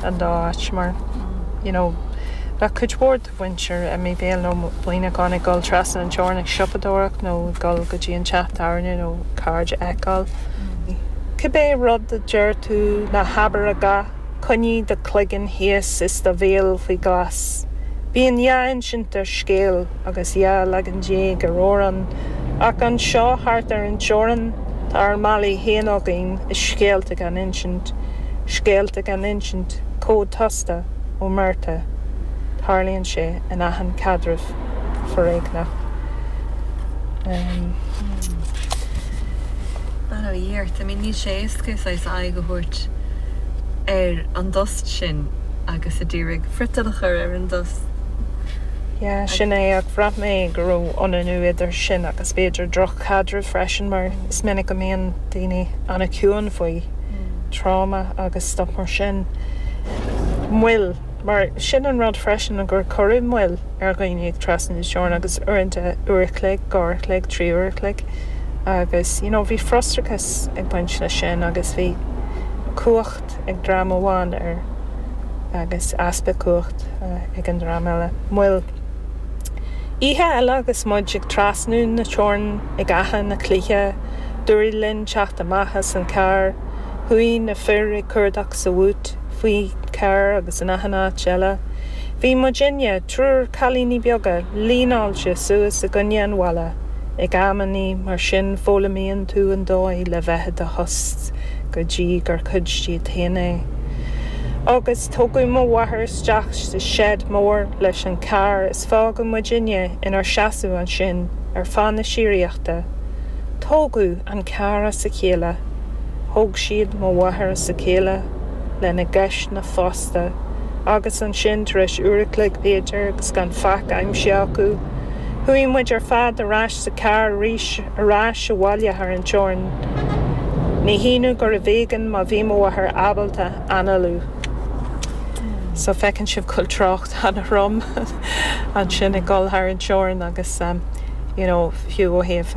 an dá áit mar you know bheadh cuid mhór de mhuintir an Chabháin nó Muineacháin ag dul trasna na teorann ag siopadóireacht nó ag dul go dtí an teach tábhairne nó cairde a fheiceáil. Cibé rud a deir tú, ná habair a dhath, coinnigh do chloigeann thíos is do bhéal faoi ghlas. Bíonn dhá insint ar scéal agus dhá leagan déag ar amhrán, ach anseo thart ar an teorainn tá ár málaí féin againn is scéalta gan insint. Scéalta gan Insint, cód tosta, omertà, tarlaíonn sé in achan caidreamh foréigneach. That a dhearth. I mean níl sé éasca saghas aghaidh a thabhairt ar an dtost sin agus ag iarraidh friotal a chur ar an dtost. Yeah, sin é ach bhraith mé go raibh ionannú idir sin agus b'fhéidir droch-chaidreamh freisin mar is minic a mbíonn daoine an-chiúin faoi. tráma agus stuif mar sin. moill mar sin an rud freisin gur cuireadh moill ar dhaoine ag trasnú na teorann agus uaireanta uair a chloig, dhá uair a chloig, trí uair a chloig agus you know bhí frustrachas ag baint leis sin agus bhí cumhacht ag dream amháin ar agus easpa cumhacht ag an dream eile. moill oíche eile agus muid ag trasnú na teorann ag Achadh na Cloiche, D'éirigh linn teacht amach as an charr. Chuaigh na fir ag cuardach sa bhúit, faoin charr agus in achan áit eile. Bhí muidinne, triúr cailíní beaga, líneáilte suas i gcoinne an bhalla. Ag amannaí mar sin foghlaimíonn tú an dóigh le bheith i do thost go dtí gur cuid díot féin é. Agus tógadh mo mháthair isteach sa seid mór leis an charr. Fágadh muidinne inár seasamh ansin ar feadh na síoraíochta. Tógadh an carr as a chéile, thóg siad mo mháthair as a chéile lena gceisteanna fosta agus ansin tar éis uair a chloig b'fhéidir agus gan faic aimsithe acu, chuaigh muid ar fad ar ais sa charr arís, ar ais abhaile thar an teorainn. Ní hionadh gur ar éigean má bhí mo mháthair ábalta análú. So feiceann sibh go bhfuil trácht. an-trom ansin ag dul thar an teorainn agus you know fiú ó thaobh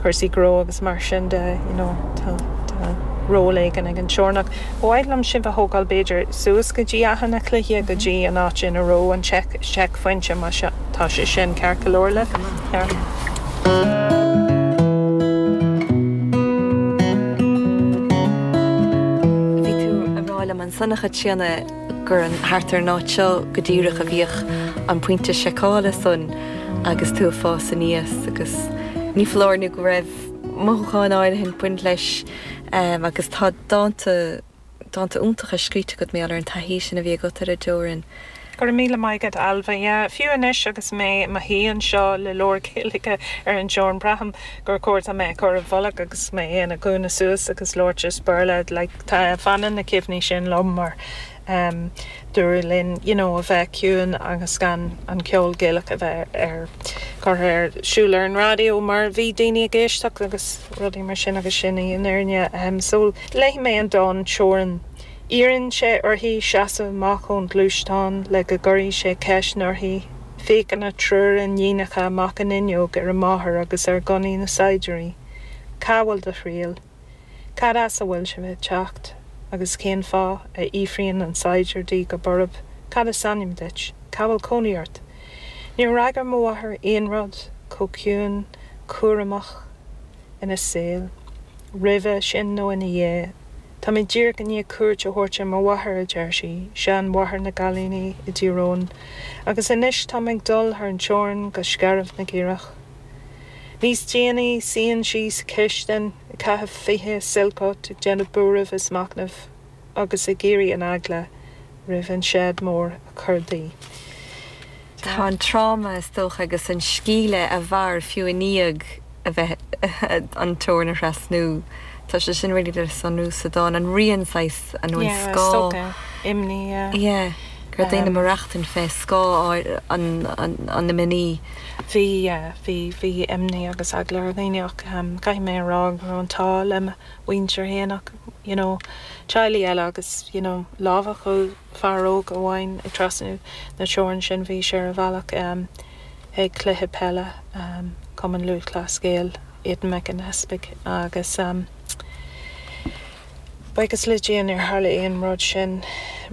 cúrsaí gnó agus mar sin de you know tá ról éigin ag an teorainn ach. ba mhaith liom sibh a thógáil b'fhéidir suas go dtí Achadh na Cloiche go dtí an áit ina raibh an seicphointe má tá sé sin ceart go leor le ceart. Bhí tú a rá liom an Seanchas Críonna. gur thart ar an áit seo go díreach a bhíodh an pointe seiceála san agus tú ag fás aníos agus ní foláir nó go raibh mothúcháin áirithe ag baint leis agus tá dánta, dánta iontacha scríte agat mar gheall ar an taithí sin a bhí agat ar an dteorainn. Go raibh míle maith agat Ailbhe. Yeah, fiú anois agus mé i mo shuí anseo le leabhar Gaeilge ar an dteorainn braithim gur cóir dom é a chur i bhfolach agus mé ina gcúinne suas agus labhairt as Béarla like, Fanann na cuimhní sin liom mar dúradh linn you know a bheith ciúin agus gan an ceol Gaelach a bheith ar curtha ar siúl ar an raidió mar bhí daoine ag éisteacht agus rudaí mar sin agus sin í an fhirinne. So léifidh mé an dán Teorainn. Iarrann sé uirthi seasamh amach ón gluaisteán le go gcuirfidh sé ceisteanna uirthi. Féachann a triúr iníonacha amach an fhuinneog ar a máthair agus ar ghunnaí na saighdiúirí. Cá bhfuil do thriall? Cad as a bhfuil sibh ag teacht? Agus cén fáth? a fhiafraíonn an saighdiúir di go borb. Cad is ainm duit? Cá bhfuil cónaí ort? Níor fhreagair mo mháthair aon rud chomh ciúin cúramach ina saol, roimhe sin nó ina dhiaidh. Tá mé díreach i ndiaidh cuairt a thabhairt ar mo mháthair, a deir sí, seanmháthair na gcailíní i dTír Eoghain, agus anois táim ag dul thar an teorainn go Scairbh na gCaorach. Níos déanaí, suíonn sí sa chistin, ag caitheamh fiche Silk Cut, ag déanamh buairimh is machnaimh agus ag iarraidh an eagla roimh an seid mór a chur di. Tá an tráma, is dócha, agus an sceimhle a mhair fiú i ndiaidh a bheith an teorainn a thrasnú, tá sé sin uilig le sonrú sa dán. An rian, saghas, nó an scáth. Yeah, is dócha imní, yeah. Yeah. ar daoine ag maireachtaint fé scáth an imní. Bhí imní agus eagla ar dhaoine ach caithfidh mé a rá go raibh an t-ádh le mo mhuintir fhéin ach you know teaghlaigh eile agus you know lámhachadh fear óg amháin ag trasnú na teorann sin bhí sé ar a bhealach chuig cluiche peile Chumann Lúthchleas Gael Aidan McAnespie agus b'fhacthas le déanaí nár tharla aon rud sin.